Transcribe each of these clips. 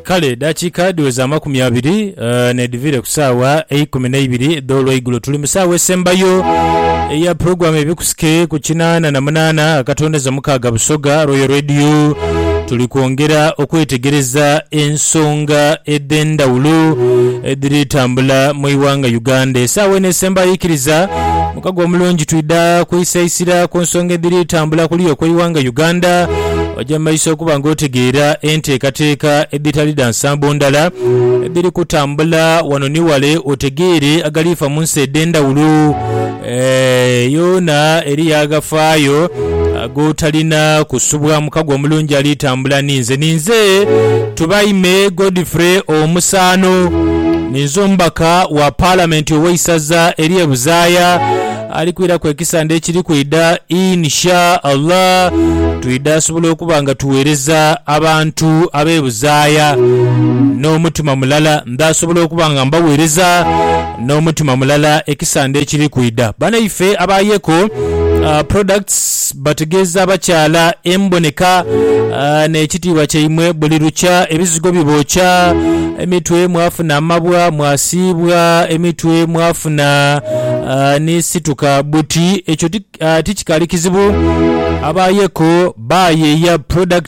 Kale edaakiika dhiweze amakumi abiri n'edhiviire ku saawa eikumi n'eibiri edh'olweigulo. Tuli mu saawa esembayo eya pulogulaamu Ebikusike ku kinaana na munaana akatondeza mukaaga Busoga Royal Radio. Tuli kwongera okwetegereza ensonga edh'endhawulo edhiri tambula mu ighanga Uganda. Esaawa eno esembayo eikiriza mukago omulungi twidha kwisaisira ku nsonga edhiri tambula kuliya okw'eighanga Uganda. Oja mu maiso okuba nga otegeera enteekateeka edhitali dha nsambo ndala edhiri kutambula wano ni wale, otegeere agaliifa mu nsi edh'endhawulo. Eeh, yoona eriyo agafaayo g'otalina kusubwa. Mukago omulungi ali tambula ni nze. Ninze Tubaime Godfrey Omusaano. Ninze omubaka wa Palamenti ow'eisaza ery'e Buzaaya. Ali kwiraku ekisande ekiri kwidha in sha Allah twidha asobola okuba nga tuwereza abantu abebuzaaya n'omutima mulala ndha asobola okuba nga mbawereza n'omutima mulala ekisande ekiri kwidha. Banaife aba Yeko Products Bategeeza abakyala emboneka n'ekitiibwa kyaimwe buli lukya. Ebizigo bibookya emitwe, mwafuna amabwa, mwasiibwa emitwe, mwafuna ni situka buti. Ekyo ti kikaali kizibu. Aba Yeko baayeeya product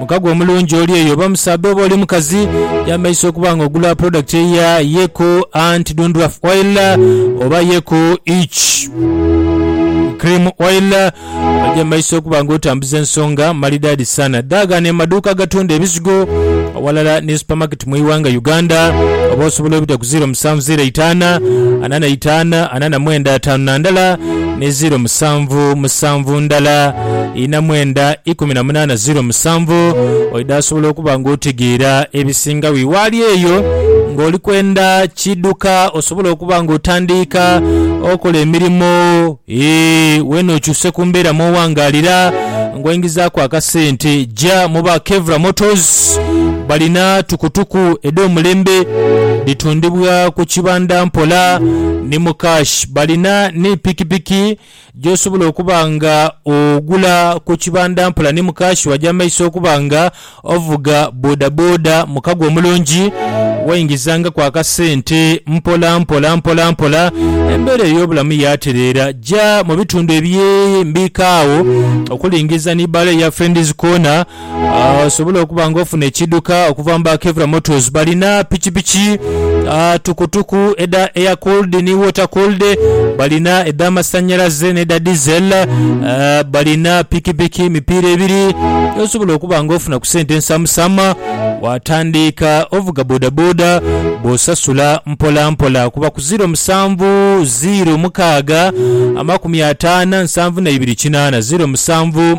Mukago omulungi oli eyo oba musaadha oba oli mukazi yameyisa okuba nga ogula product eya Yeku Ant Dundruff Oil oba Yeku Itch Cream Oil ogyemeyisa okuba nga otambuza ensonga malidaadi sana. Daagana emaduuka agatunda ebizigo awalala ni supermarket mu iwanga Uganda oba osobola obita ku ziro musanvu ziro eitaana ana na itaana ana na mwenda ataanu na ndala ni ziro musanvu musanvu ndala. ina mwenda ikumi na munaana ziro musanvu, oidha osobola okuba ng'otegeera ebisingagho iwaali eyo. Ng'oli kwenda kidhuka osobole okuba ng'otandiika okola emirimo, ee, weene okyuse ku mbeera mw'owangaalira ng'oingizaaku akasente. Ja mu ba Kevra Motors, balina tukutuku edh'omulembe dhitundibwa ku kibanda mpola ni mu kashi. Balina ni pikipiki. gy'osobola okuba nga ogula ku kibanda mpola ni mukaashi waja mu maiso okuba nga ovuga bodaboda mu kago omulungi, waingizangaku akasente mpolampola mpolampola embeera ey'obulamu yaatereera. Ja mu bitundu eby'embiika agho okuli Ngiza ni bbaala eya Friends Corner osobole okuba nga ofuna ekiidhuka okuva mu ba Kevra Motors. Balina pikipiki ah, tukutuku edha air cooled ni water cooled, balina edh'amasannyalaze n'edha diesel, eh, balina pikipiki emipiira ebiri gy'osobola okuba nga ofuna ku sente ensamusama waatandiika ovuga bodaboda bw'osasula mpolampola kuba ku ziiro musanvu ziiro mukaaga amakumi ataano a nsanvu na ibiri kinaana, ziiro musanvu.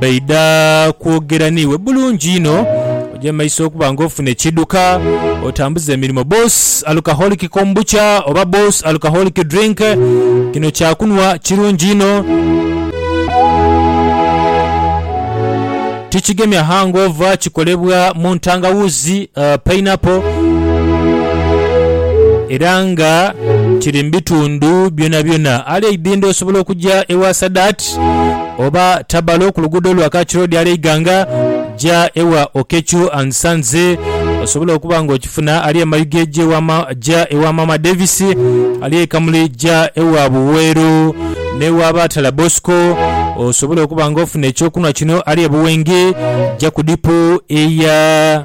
baidha kwogera n'iwe bulungi inho. Oja mu maiso okuba ng'ofuna ekidhuka, otambuze emirimo. Boss Alcoholic Kombucha oba Boss Alcoholic Drink, kino kyakunhwa kirungi inho. Tikigemya hangover, kikolebwa mu ntangawuuzi, pineapple, era nga kiri mu bitundu byonabyona. Ali eidhindho osobola okuja ewa Sadat. Street oba Tabalo ku luguudo lwa Kach Road ale Iganga, ja ewa Okechu and Sons osobole okuba nga okifuna. Ali e Mayuge ja ewa ma, ja ewa Maama Davis. Ali e Kamuli ja ewa Buweeru n'ewa Batala Bosco osobole okuba nga ofuna eky'okunhwa kino. Ali e Buwenge ja ku dipu eya.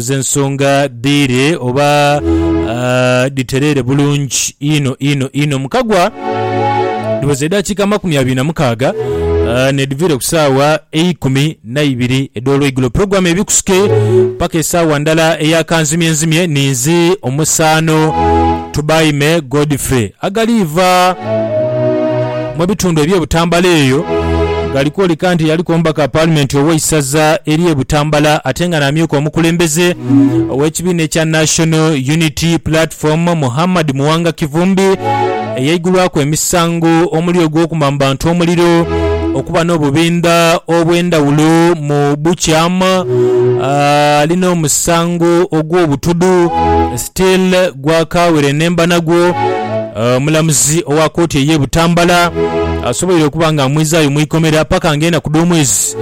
z'ensonga dhiire oba dhitereere bulungi inho inho inho. Mukagwa dhiweza edhakiika amakumi abiri na mukaaga n'edhiviire ku saawa eikumi na ibiri edh'olweigulo. Pulogulaamu ebikusike paka esaawa ndala eya kanzimyenzimye ninze omusaano Tubaime Godfrey agaliiva. mu ebitundu eby'e Butambala eyo gali kwoleka nti yaliku omubaka wa Paalimenti ow'eisaza ery'e Butambala ate nga n'amyuka omukulembeze ow'ekibiina ekya National Unity Platform, Muhammad Muwanga Kivumbi eyaigulwaku emisango omuli ogw'okuma mu bantu omuliro, okuba n'obubindha obw'endhawulo mu bukyamu ali n'omusango ogw'obutudu. Till Gwakaawire Nembanagwo, omulamuzi owa kooti eye Butambala asoboire okuba nga amwizaayo mu ikomera paka nga enaku dh'omwezi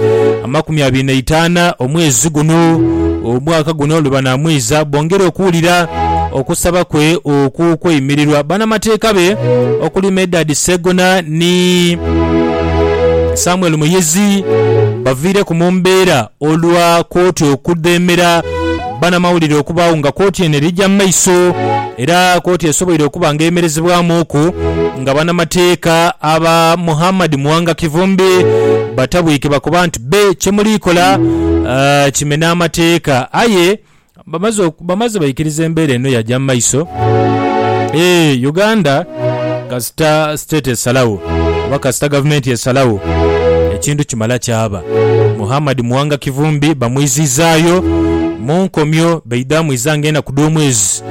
amakumi abiri n'eitaana omwezi guno omwaka guno lwebanamwiiza bongere okuwulira okusaba kwe okw'okweyimirirwa banamateeka be okuli Medard Ssegona ni Samuel Muyizzi baviireku mu mbeera Olwa kooti okudheemera banamawulire okubaagho nga kooti eno eri gya mu maiso era kooti esoboire okuba nga eyemerezebwamuuku nga banamateeka aba Muhammad Muwanga Kivumbi batabwike bakoba nti be kyemuliikola kimena amateeka aye Bamaze oku- bamaze baikiriza embeera eno yaja mu maiso eeh Uganda kasita state esalagho oba kasita gavumenti esalagho ekintu kimala kyaba. Muhammad Muwanga Kivumbi bamwizizaayo mu nkomyo baidha mwiza nga enaku dh'omwezi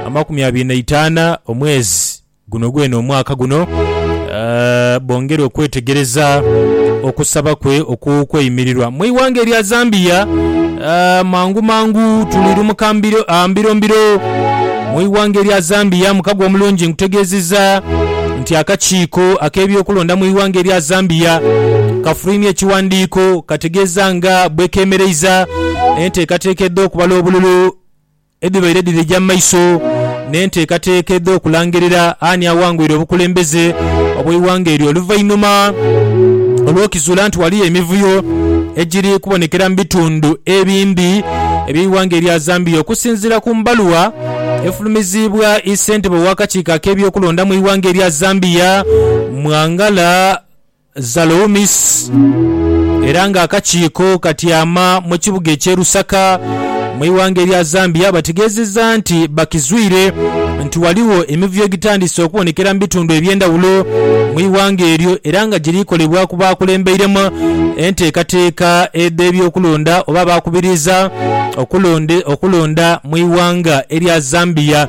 amakumi abiri na itaana omwezi. Guno gwene omwaka guno bongera okwetegereza okusaba kwe okw'okweyimirirwa mu ighanga erya Zambia. Mangu mangu tulirumuka mbiro mbiro mu ighanga erya Zambia. Mukago omulungi nkutegeezizza nti akakiiko ak'ebyokulonda mu ighanga erya Zambia kafulwimye ekiwandiiko kategeeza nga bwekemereiza enteekateeka edh'okubala obululu. Edhibaire dhirija mu maiso n'enteekateeka edh'okulangirira ani awangwire obukulembeze obw'eighanga eryo oluvainhuma olw'okizuula nti ghaliyo emivuyo egiri kubonekera mu bitundu ebindi eby'eighanga erya Zambia. Okusinziira ku bbaluwa efulumiziibwa ssentebe ow'akakiiko ak'ebyokulonda mu ighanga erya Zambia, Mwangala. Zaloumis, era nga akakiiko katyama mu kibuga eky'e Lusaka mu ighanga erya Zambia bategeezezza nti bakizwire nti ghaligho emivuyo egitandise okubonekera mu bitundu eby'endhawulo mu ighanga eryo era nga giri kolebwa ku baakulembeiremu enteekateeka edh'ebyokulonda oba abaakubiriza okulonda mu ighanga erya Zambia.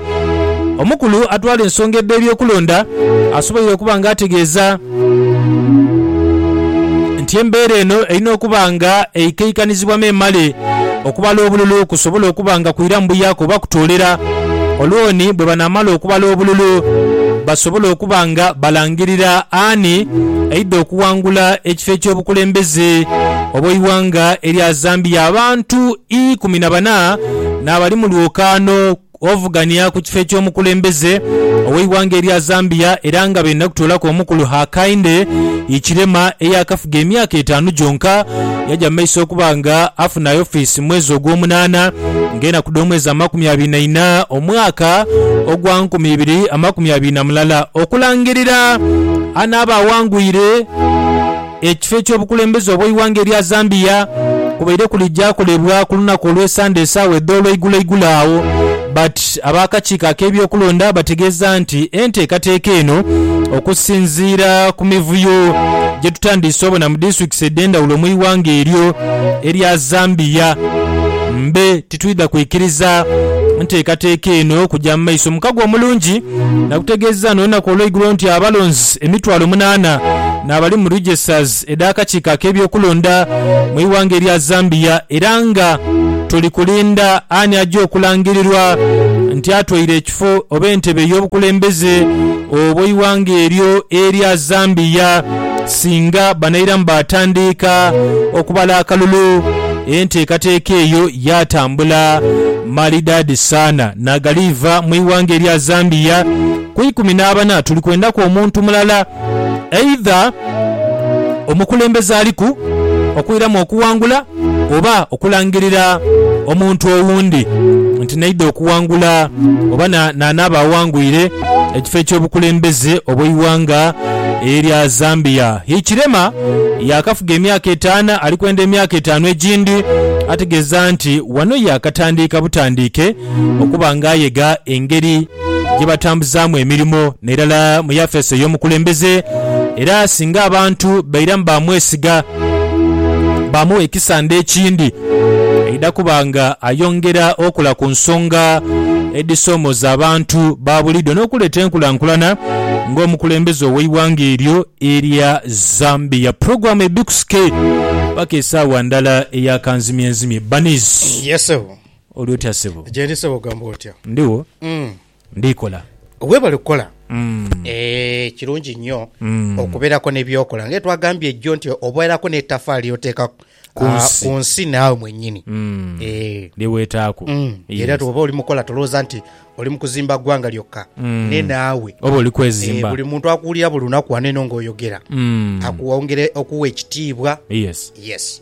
Omukulu atwala ensonga edh'ebyokulonda asoboire okuba nga ategeeza. nti embeera eno erina okuba nga eikaikanizibwa memale okubala obululu kusobole okuba nga kwiramu buyaku oba kutoolera Olooni bwe banaamala okubala obululu basobole okuba nga balangirira ani aidha okuwangula ekifo eky'obukulembeze obw'eighanga erya Zambia. Abantu ikumi na bana n'abali mu lwokaano. Ovugania ku kifo eky'omukulembeze ow'eighanga erya Zambia era nga benda kutoolaku omukulu Hakainde Hichilema eyaakafuga emyaka etaanu gyonka, yaja mu maiso okuba nga afuna ofisi mu mwezi ogw'omunaana ng'enaku dh'omwezi amakumi abiri na ina omwaka ogwa nkumi ibiri amakumi abiri na mulala okulangirira anaaba awangwire. Ekifo eky'obukulembeze obw'eighanga erya Zambia kubaire kuli gyakolebwa ku lunaku olw'esande esaawa edh'olweigulo igulo agho but ab'akakiiko ak'ebyokulonda bategeeza nti enteekateeka eno okusinziira ku mivuyo gyetutandiise obona mu disitulikisi edhendhawulo mu ighanga eryo erya Zambia mbe titwidha kwikiriza nteekateeka eno kugya mu maiso. Mukago Omulungi nakutegeezezza n'olunaku olweigulo nti abalonzi emitwalo munaana n'abali mu registers edh'akakiiko ak'ebyokulonda mu ighanga erya Zambia era nga tuli kulinda ani aja okulangirirwa nti atwaire ekifo oba entebe ey'obukulembeze obw'eighanga eryo erya Zambia. Singa banairamu baatandiika okubala akalulu, enteekateeka eyo yaatambula malidaadi sana naghaliiva mu ighanga erya Zambia. Ku ikumi n'abana tuli kwendaku omuntu mulala eidha omukulembeze aliku okwiramu okuwangula. oba okulangirira omuntu owundi nti n'aidha okuwangula oba n'anaaba awangwire ekifo eky'obukulembeze obw'eighanga erya Zambia. Hichilema yaakafuga emyaka etaanu ali kwenda emyaka etaanu egindi ategeeza nti wano yaakatandiika butandiike okuba nga ayega engeri gye batambuzaamu emirimo n'irala mu yafeesi ey'omukulembeze era singa abantu bairamu baamwesiga, baamugha ekisande ekindi, aidha kuba nga ayongera okola ku nsonga edhisoomooza abantu ba buliidho n'okuleeta enkulankulana ng'omukulembeze ow'eighanga eryo erya Zambia. Pulogulaamu ebbikusike paka esaawa ndala eya kanzimyenzimye. Bunnies. Yes sebo. Oli otya ssebo? Gyendi ssebo, gamba otya? Ndigho, ndi kola. Webale kukola. Eeh kirungi nnyo okuberako ne byokola nga etwagambye jjo nti oberako ne tafaali lyoteeka ku nsi naawe mwenyini eeh lye wetaaku era bwoba oli mukola tolowooza nti oli mukuzimba ggwanga lyokka ne naawe oba oli kwezimba. Buli muntu akuwulira buli lunaku wano eno nga oyogera akuwongera okuwa ekitiibwa. Yes.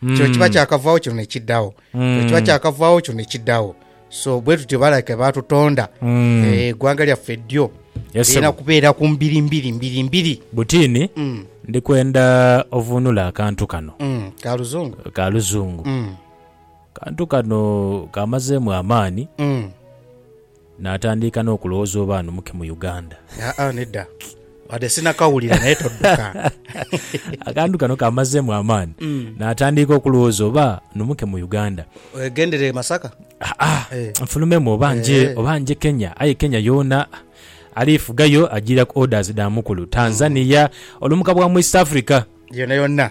kino kiba hmm. kyakavaawo kino nekidhawo hmm. kino kiba kyakavaawo kino nekidhawo so bwe tutyo balake batutonda hmm. eh, eggwanga lyaffe ddyo lirina kubeera ku mbiri mbiri mbiri mbiri butiini ndi kwenda ovuunula akantu kano ka luzungu ka luzungu kantu kano kamazeemu amaani Natandiika n'okulowooza oba anumuke mu Uganda. Aa nedda, wadde sinakawulira naye todduka. Akantu kano kammazeemu amaani. Natandiika okulowooza oba anumuke mu Uganda. Weegendere e Masaka? Aa, nfulumemu oba nje, oba nje Kenya. Aye Kenya yoona ali fugayo ajiira ku orders dha mukulu. Tanzania, olumuka bwa mu East Africa. Yonayona.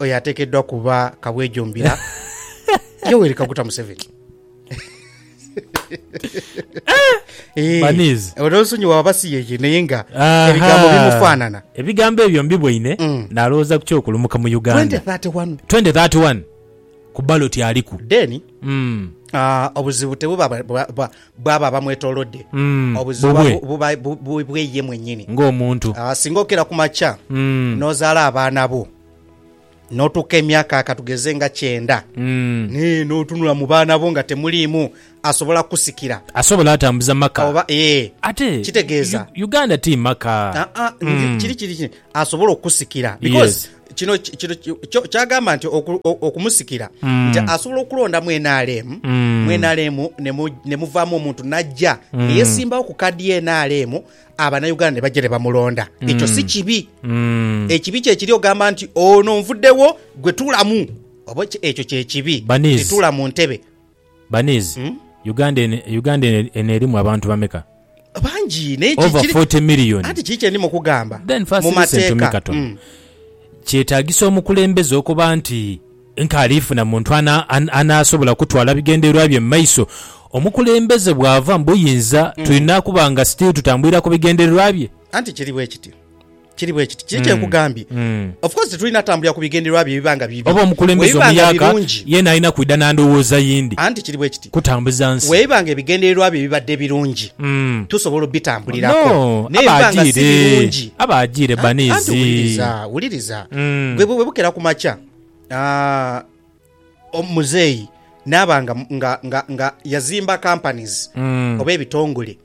Oyo atekeddwa kuba kabwejombira Yoweri Kaguta Museveni. Eh, Baniz. Olw'ensonyiwa waba si yeye naye nga Aha. ebigambo bimufaanana. ebigambo ebyo mbiboine Mm. nalowooza ku kyokulumuka mu uganda 2031 2031 ku baloti aliku then Mm. ah, obuzibu tebuba bwa- bwa- Bw'abo abamwetoolodde. Obuzibu bubwe. Buba bubwe ye mwennyini. Ng'omuntu. Singa okira ku makya n'ozaala abaana bo, n'otuuka emyaka ka tugeze nga kyenda, naye n'otunula mu baana bo nga temuliimu asobola kukusikira. Asobola atambuza maka. Oba, ee. Ate. Kitegeeza. Uganda ti maka. Aa, ndi, kiri, kiri, kiri, asobola okukusikira. Yes. Because kino ki- kino ki- kyo- kyagamba nti oku- o- okumusikira Mm. nti asobola okulondamu nrm Mm. mu nrm ne mu- ne muvaamu omuntu najja Mm. neyesimbawo ku kadi ye nrm abanauganda ne bajja ne bamulonda ekyo Mm. si kibi Mm. ekibi kyekiri ogamba nti ono nvuddewo gwe tulamu oba ki- ekyo kyekibi Baniz. Nti tula mu ntebe Baniz, Uganda eno Uganda eno eno erimu abantu bameka? Bangi naye ki, Over kiri, 40 million. anti kiri kye ndima okugamba Then first mu listen to me mateeka. katono. Mm. Kyetagisa omukulembeze okuba nti nka alifuna muntu ana, an, anasobola kutwala bigendererwa bye mu maiso. Omukulembeze bwava mu buyinza tulina kuba nga still tutambulira ku bigendererwa bye. Anti kiri bwe kityo. Kiri bwe kiti. Kiri kye nkugambye. Of course tetulina tambulira ku bigendererwa bye biba nga bibi. Oba omukulembeze Bwe biba nga omuyaaka birungi, yeena alina kwidha na ndowooza yindi anti kiri bwe kiti, kutambuza nsi. bwe biba nga ebigendererwa bye bibadde birungi, Mm. tusobola obitambulirako. No, Naye aba bwe biba nga si ajiire. birungi, Aba ajiire Anti- anti baniizi. wuliriza, wuliriza. Mm. Gwe bwe bukera ku makya, ah, Omuzeeyi naaba nga, nga, nga, nga yazimba companies oba ebitongole,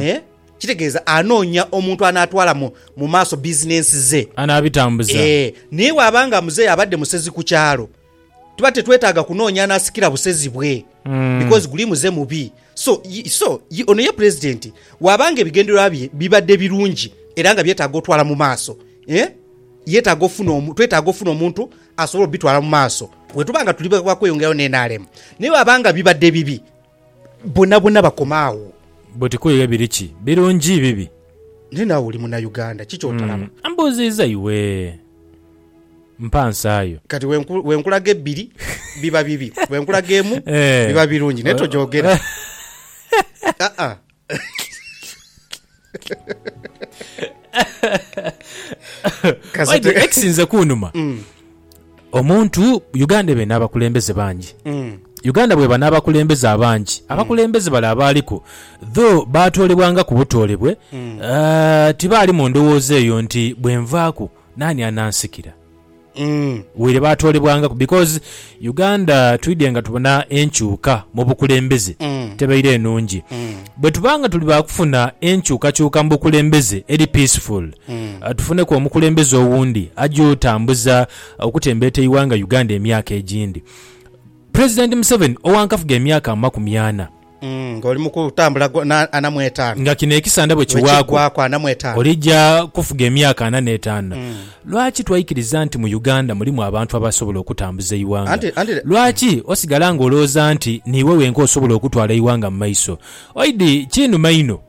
eeh, kitegeeza anoonya omuntu anaatwala mu, mu maaso business ze. Anaabitambuza. Eeh, naye bw'aba nga muzeeyi abadde musezi ku kyalo, tuba tetwetaaga kunoonya anaasikira busezi bwe because guli muze mubi. So, y, so, y, ono ye Pulezidenti bw'aba nga ebigendererwa bye bibadde birungi era nga byetaaga otwala mu maaso, eeh, yetaaga ofuna omu, twetaaga ofuna omuntu asobola obitwala mu maaso. Bwetuba nga tuli ba kweyongerayo n'enaremu, ni bwaba nga bibadde bibi, bonabona bakoma agho. Buti kuyiga biri ki birungi bibi. Naye naawe oli Munauganda, ki kyotalaba? Umm mbuuziiza iwe. Mpa nsaayo. Kati bwenkulaga ebbiri biba bibi, bwenkulaga emu biba birungi naye togyogera. Aa. Kasita- Waidhe ekisinze kunuma Mm, omuntu uganda ebe n'abakulembeze bangi mm, uganda bweba n'abakulembeze abangi abakulembeze bale abaaliku tho baatoolebwanga ku butoolebwe mm. eh, tibaali mu ndowooza eyo nti bwenvaaku naani anansikira Waire baatoolebwangaku because Uganda twidhye nga tubona enkyuka mu bukulembeze tebaire nungi. Bwetuba nga tuli baakufuna enkyukakyuka mu bukulembeze eri peaceful, tufuneku omukulembeze owundi aja otambuza okutembeeta eighanga Uganda emyaka egindi. President Museveni owa nkafuga emyaka amakumi ana. Ng'oli mu kutambula gwona ana mu etaanu. Nga kino ekisanda bwe kiwaaku olija kufuga emyaka ana n'etaanu. Lwaki twaikiriza nti mu Uganda mulimu abantu abasobola okutambuza eighanga? Lwaki osigala ng'olowooza nti niiwe wenka osobola okutwala eighanga mu maiso? Oidhi kinuma inho.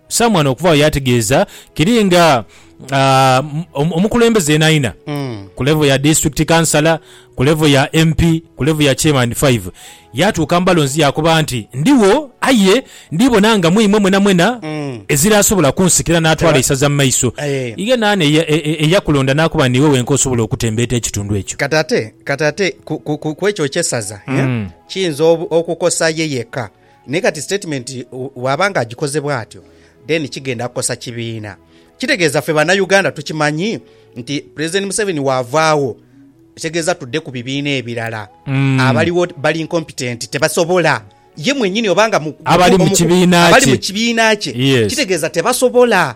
Someone okuva agho yategeeza kiri nga omukulembeze yenaayena ku level ya District Councillor, ku level ya MP, ku level ya Chairman five yaatuuka mu balonzi yaakoba nti, Ndigho aye ndiibona nga mwimwe mwenamwena eziraasobola kunsikira naatwala eisaza mu maiso. Ye naani eyakulonda naakoba niiwe wenka osobola okutembeeta ekitundu ekyo? Kati ate ku ekyo eky'esaza kiyinza okukosa ye yekka. Naye kati sitatimenti bw'aba nga agikoze bw'atyo then kigenda kukosa kibiina. Kitegeeza ffe Bannauganda tukimanyi nti Pulezidenti Museveni waavaagho kitegeeza tudde ku bibiina ebirala. Abaliwo bali incompetenti, tebasobola. Ye mwenyini oba nga mutuufu, abali mu kibiina kye kitegeeza tebasobola.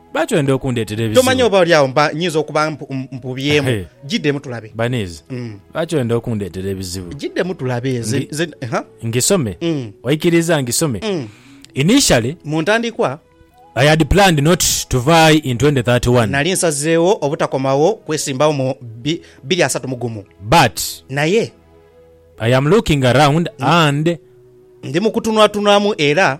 Lwaki oyenda okundeetera ebizibu? Tomanya oba oli agho mba nyinza okuba mpubyemu. Giddemu tulabe. Baniiza, lwaki oyenda okundeetera ebizibu? Giddemu tulabe. Ngisome? Oikiriza ngisome? Initially, mu ntandikwa, I had planned not to vie in 2031. Nali nsazeegho obutakomawo kwesimbagho mu biri asatu mu gumu. But, naye, I am looking around and, ndi mu kutunulatunulamu era.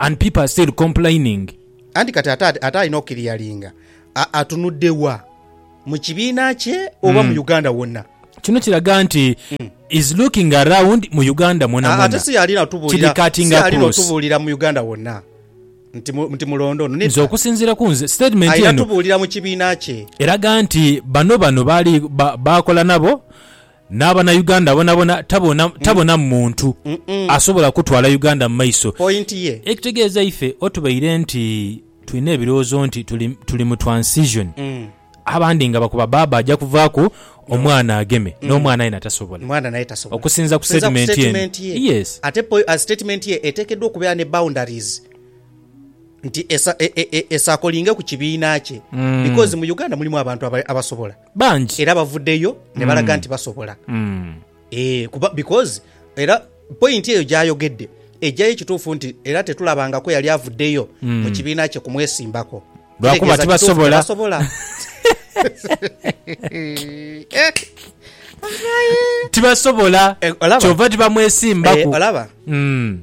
And people are still complaining. Anti kati ate ate alina okukiriyalinga atunudde wa? Mu kibiina kye oba mu Uganda wonna? Kino kiraga nti is looking around mu Uganda mwonamwona. Ate si y'alina otubuulira, si y'alina otubuulira mu Uganda wonna nti nti mulonde ono. Nze okusinziira ku nze statement eno, alina tubuulira mu kibiina kye. Eraga nti bano bano baali baakola nabo. N'abanauganda bonabona tabona tabonamu muntu asobola kutwala Uganda mu maiso. Point ye. Ekitegeeza ife o tubaire nti tulina ebirowoozo nti tuli tuli mu transition, abandi nga bakoba bbaabba aja kuvaaku omwana ageme, n'omwana aye na tasobola. Mwana naye tasobola. Okusinza ku Okusinza ku statement eno. statement ye. Yes. Ate po, a statement ye eteekeddwa okubeera ne boundaries nti esa, e, e, e, esaakolinge ku kibiina kye because mu Uganda mulimu abantu aba, abasobola. bangi era bavudheyo ne balaga mm. nti basobola mm. e, kuba because era pointi eyo gyayogedde ejjayo ekituufu nti era tetulabangako yali avuddeyo mm. mu kibiina kye kumwesimbako lwakuba tibasobola tibasobola eh, kyova tibamwesimbako eh, olaba mm.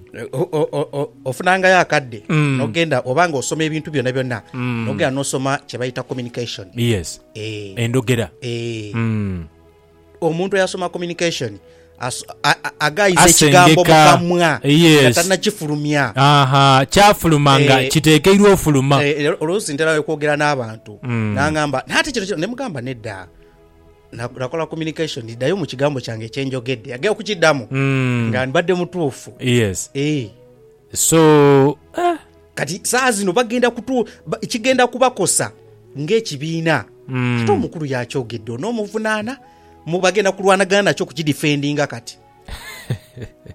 ofunangayo akadde mm. nogenda obanga osoma ebintu byona byonna mm. nogenda nosoma kyebayita communication yes Endhogera. Eeh. Omuntu eyasoma communication aghaaiza ekigambo mu kamwa nga tanakifulumya. Ahaa. Kyafuluma nga kitekeirwa ofuluma. Eeh. Oluusi ntera okwogera n'abantu n'angamba naye ate kino kino. Ne mugamba nedda, nakola communication ddayo mu kigambo kyange kye njogedde. Agenda okukiddamu nga mbadde mutuufu. Eeh. So. Kati saa zino bagenda kutu, ba, kigenda kubakosa ng'ekibiina. Ate omukulu yaakyogedde, onoomuvunaana? Mu, bagenda kulwanagana nakyo okukidifendinga kati.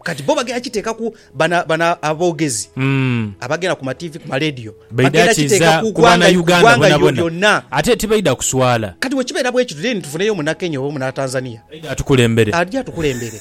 Kati bo bagenda kiteeka ku, bano, bano aboogezi abagenda ku matiivi, ku maleediyo, Baidha bagenda kiteeka kiza ku ku ggwanga, ku Banauganda ggwanga lyo, bonabona. lyonna. Ate tibaidha kuswala. Kati bwe kibeera bwe kityo, then tufuneyo Munakenya oba Munatanzania Aidha atukulembere. aja atukulembere.